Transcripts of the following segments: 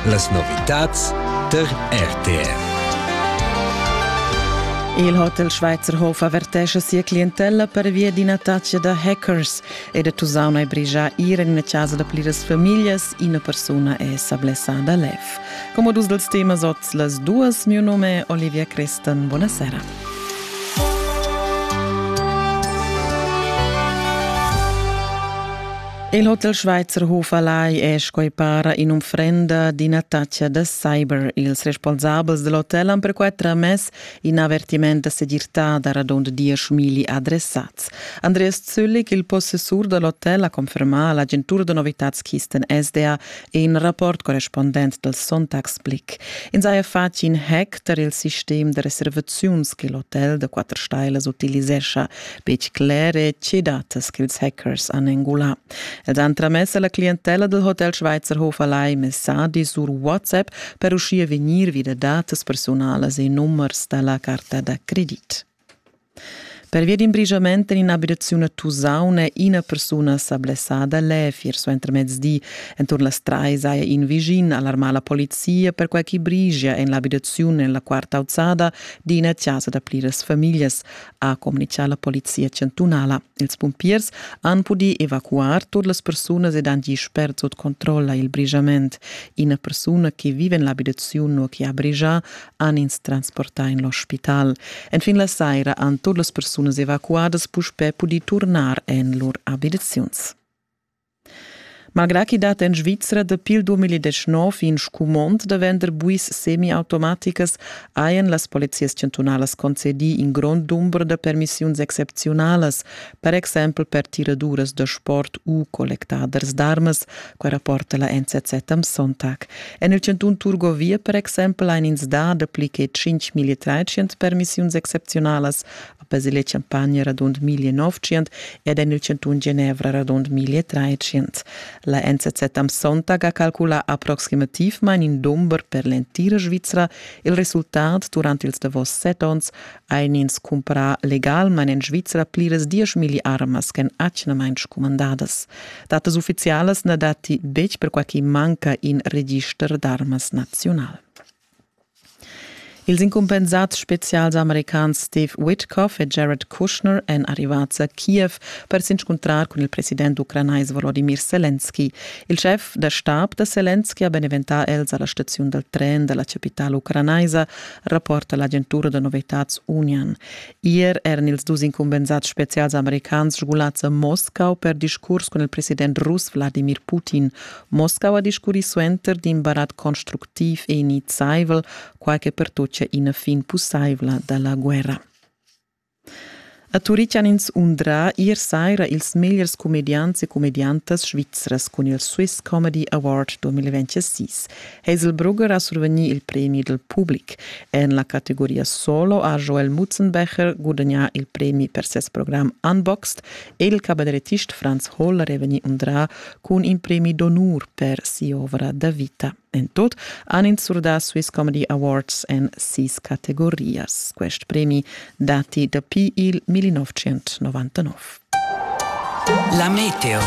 Las novitads der RTR. Il Hotel Schweizer Hof avertescha sia clientella pervia d'ina taccia da hackers ed ha tusaun ai brigià ir en una casa da pliras famiglas. Ina persuna è sa blessada lef. Come dus dels temas oz las duas, mio nome è Olivia Crestan. Buonasera. Il Hotel Schweizer Hoferlei è sco para un'unfrenda d'ina taccia da cyber. Ils responsabels del hotel han perquai tramess in avertiment da segirtà da radund diesch milli adressats. Andreas Züllig, il possessur dell'hotel, ha confermà all'agentura da novitads Kisten SDA In rapport correspondent dal Sonntagsblick ins haja fatg in hack tar il sistem da reservaziuns che l'hotel da quatter stailas utilisescha, betg clere tge datas ch'ils hackers han engulà. Els han tramess alla clientella del Hotel Schweizer Hof Alai messagis sur WhatsApp per uschia vegnir vi da datas personalas e numers da la carta da credit. Pervia d'in brigiament en in'abitaziun a Tusaun è ina persuna sa blessada lev ier suentermezdi. Enturn las trais haja in vischin alarmà la polizia perquai ch'i brigia en l'abitaziun en la quarta auzada d'ina chasa da pliras famiglias, ha communitgà la polizia chantunala. Ils pumpiers han pudì evacuar tut las persunas ed han gì spert sut controlla il brigiament. Ina persuna che viva en l'abitaziun u che ha brigià han ins transportà en l'ospital. Enfin la saira han tut las persunas evacuadas puspè pudì turnar en lur abitaziuns. Malgrà ch'i dat en Svizra dapi il 2019 in scumond da vender buis semiautomaticas, hajan las polizias chantunalas concedì in grond dumber da permissiuns excepziunalas per exempel per tiraduras da sport u collectaders d'armas, quai rapporta la NZZ am Sonntag. En il chantun Turgovia per exempel ein ins dà dapli che 5.300 permissiuns excepziunalas, a Basile Champagna radund 1.900 ed en il chantun Genevra radund 1.300. La NZZ am Sonntag ha calculà approximativmain in dumber per l'entira Svizra. Il resultat durant ils davos set onns ein ins cumpra legalmein en Svizra pliras dieschmilli armas ch'en atgnamain scumandadas. Datas ufficialas na datti betg perquai che manca in register d'armas nazional. Ils incumpensads spezials americans Steve Witkoff e Jared Kushner èn arrivads a Kiev per s'inscuntrar cun il president ucranais Volodymyr Selenski. Il schef da stab da Selenski ha beneventà els a la staziun dal tren da la chapitala ucranaisa rapporta l'agentura da novitads Union. Ier eran ils dus incumbensads spezials americans sgulads a Moscau per discurs cun il president russ Wladimir Putin. Moscau ha discurri suenter d'in barat constructiv e iniziaivel, quai che pertutgia ina fin pussaivla da la guerra. A Turitg han ins undrà ier saira ils megliers cumediants e cumediantas svizras cun il Swiss Comedy Award 2026. Hazelbrugger ha survegnì il premi dal public. En la categoria solo ha Joel Mutzenbecher gudagnà il premi per ses program Unboxed e il cabarettist Franz Holler è vegnì undrà cun in premi d'onur per si'ovra da vita. En tut han ins surdà Swiss Comedy Awards en sis categorias. Quest premi datti dapi il 1999. La meteo.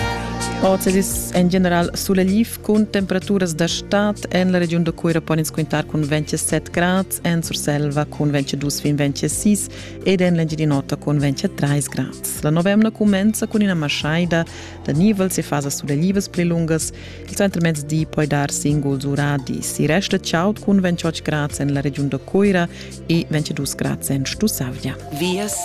Oz es en general suleliv cun temperaturas da stad en la regiun da Cuira pon ins quintar cun 27 grad, en Surselva cun 22 fin 26 ed en l'Engiadin'Ota cun 23 grad. La novemna cumenza cun ina maschaida da nivel e fasa sulelivas pli lungas Il centrmezdi poi dar singuls uradis. I resta chaud cun 28 grads en la regiun da Coira e 22 grads en Stussavia. Vias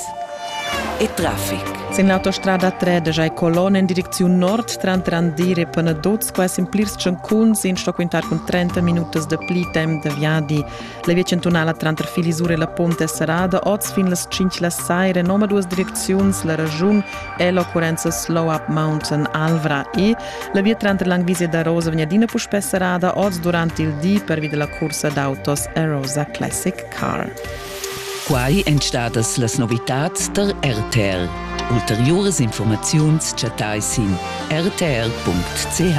e traffic. Sin l'autostrada 3 da Jai Colon en direcziun nord tranteran dire e Panadoz qua semplirs tschancuns in sto quintar cun 30 minutas da pli temp da viadi La via chantunala tranter Filisur e la Pont è serrada oz fin las 5 la saira en omaduas direcziuns, la regiun è l'occurrenza Slow Up Mountain Alvra e la via tranter Langvisia da Rosa vegn adina puspè serrada oz durant il di pervi da la cursa d'autos Arosa Classic Car. Quai èn stadas las novitads tar RTR. Ulteriuras informaziuns chattai sin rtr.ch.